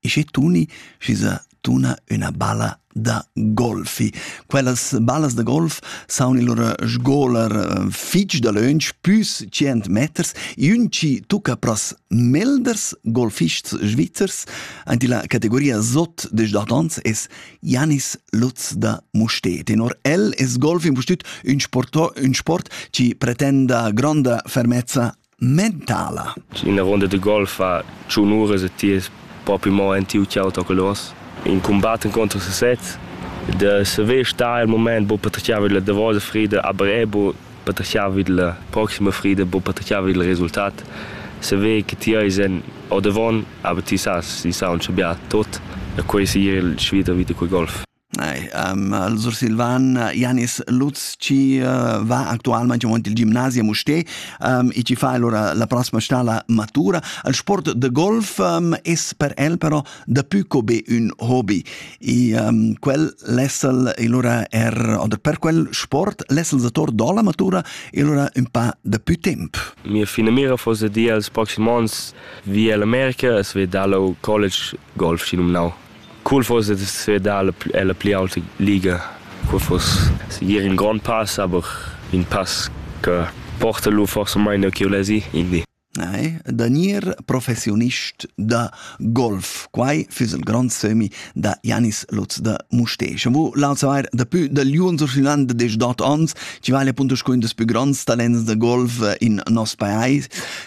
e sche tuni schi sa tuna üna balla da golfi. Quellas ballas da golf saun il lur sgoler eh, fich dalöntsch, püs 100 meters, e ün chi tucca pras melders golfists svizzers ant la categoria sot des datons es Janis Lutz da Mustet. Tenor el es golf impustüt ün sport, ün sport chi pretenda gronda fermezza mentala. Ina runda de golf fa tschun uras e ti es propi mo en tiu chau tocca los. In combat incontro sesez de saver star il moment bu patriciar vid la davosa frida aber è bu patriciar vid la proxima frida bu patriciar vid il resultat saver che ti eis en o davon aber ti sas ti sa un biat tot e quei si il sfida vid quei golf Il Sursilvan Janis Lutz chi va actualmaing avunt il gimnasi a Musté e chi fa alura la prossima stala matura. Il sport da golf es per el però dapü co be ün hobi e quel lessa'l alura er oder per quel sport lessa'l zator do la matura alura ün pa dapü temp. Mia finamira foss dir els proxims ans via l'America, es ve dal college golf, schi numnau. Cul foss es sverdà è la pli auta liga. Quel foss segir ün grond pass, aber ün pass che porta lu forsa mai neu che vuless ir in di. Nei, Danier, professionist da golf. Quai füss il grond sömi da Janis Lutz da Mustesch. Wo lausair dapü da liun sursilanda desch dot ons, ci vale punto scu ün des pü grands talents da golf in nos país.